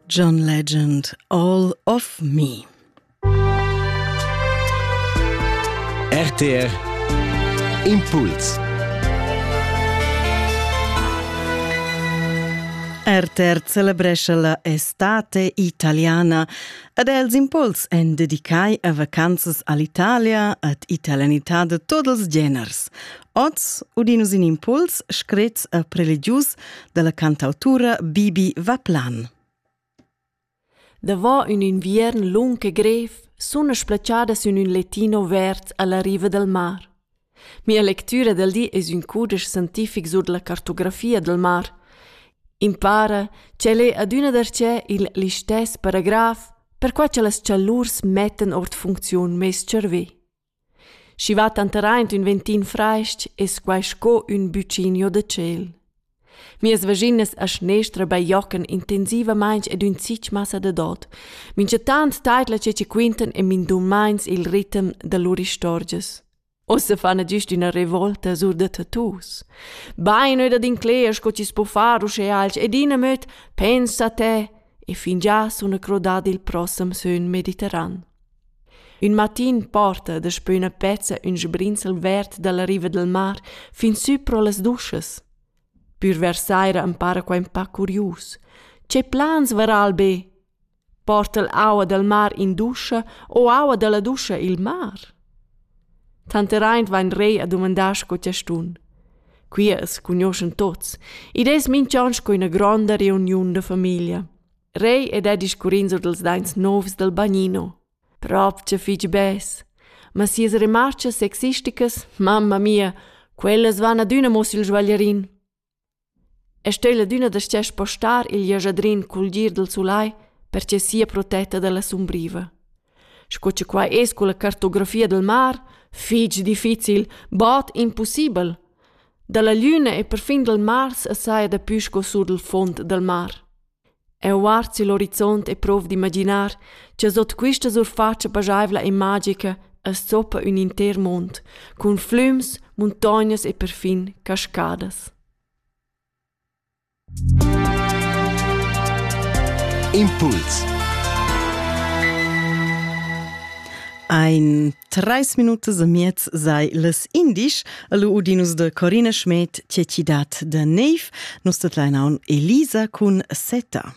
John Legend, All of Me. RTR Impuls RTR celebrescha la estate italiana ed els impuls en dedicai a vacanzas all'Italia ad italianità de tots els geners. Oz udin nus in impuls scrit e religius dalla cantautura Bibi Vaplan. Davant un inviern lung e grev sun splaciadas in ün letino verd alla riva del mar. Mia lectura del di es ün cudesch scientific sur la cartografia del mar. Impara ch'el è adüna darcheu il listess paragraf, perquai cha las chalurs mettan ord funcziun meis cervè. Schi va tanteraint ün ventin frasch es quai sco ün buccinio da tschel. Mias vaginas a schnestra bajocan intensivamaing ed ün zich massa da dod. Minchataunt taidla che chi quintan e mindummains il ritem da lur istorgias. Ussa fana güst üna revolta sur da tattoos. Bain öda d'incler sco chi's po far uschè alch ed in amöd pensa te e fingià suna crodà il prossem sön Mediterran. Ün matin porta daspö üna pezza ün sbrinzel verd da la riva dal mar fin sü pro las duschas. Pür vers saira am para quai ün pa curius. Che plans vara'l be? Porta'l aua dal mar in duscha o aua da la duscha i'l mar? Tanteraint vain Rei a dumandar sco chastun. Qui as cugnuoschan tuots, id es minch'on sco üna gronda reuniun da famiglia. Rei ed ha discurrin sur dals daints novs dal bagnino. Propcha fich bes. Ma sias remarchas sexisticas, mamma mia, quellas van adüna mo sül svaglierin. E stel adüna da stia spostar il jajadrin cul gir dal sulai perche sia protetta dalla sumbriva. Sco che qua es con la cartografia del mar, fich difficil, bod impossibel. Dalla lüna e perfin dal Mars assai da pü sco sur del fond dal mar. Eu guard sül orizont e prov d'imaginar cha sot quista surfatscha paschaivla e magica as zoppa ün inter mond cun flüms, muntognas e perfin cascadas. Impuls ein Treis minutas e miez sei les indisch el Udinus de Corine Schmed Tietidad de Neiv, nus det leinaun Elisa cun Seta.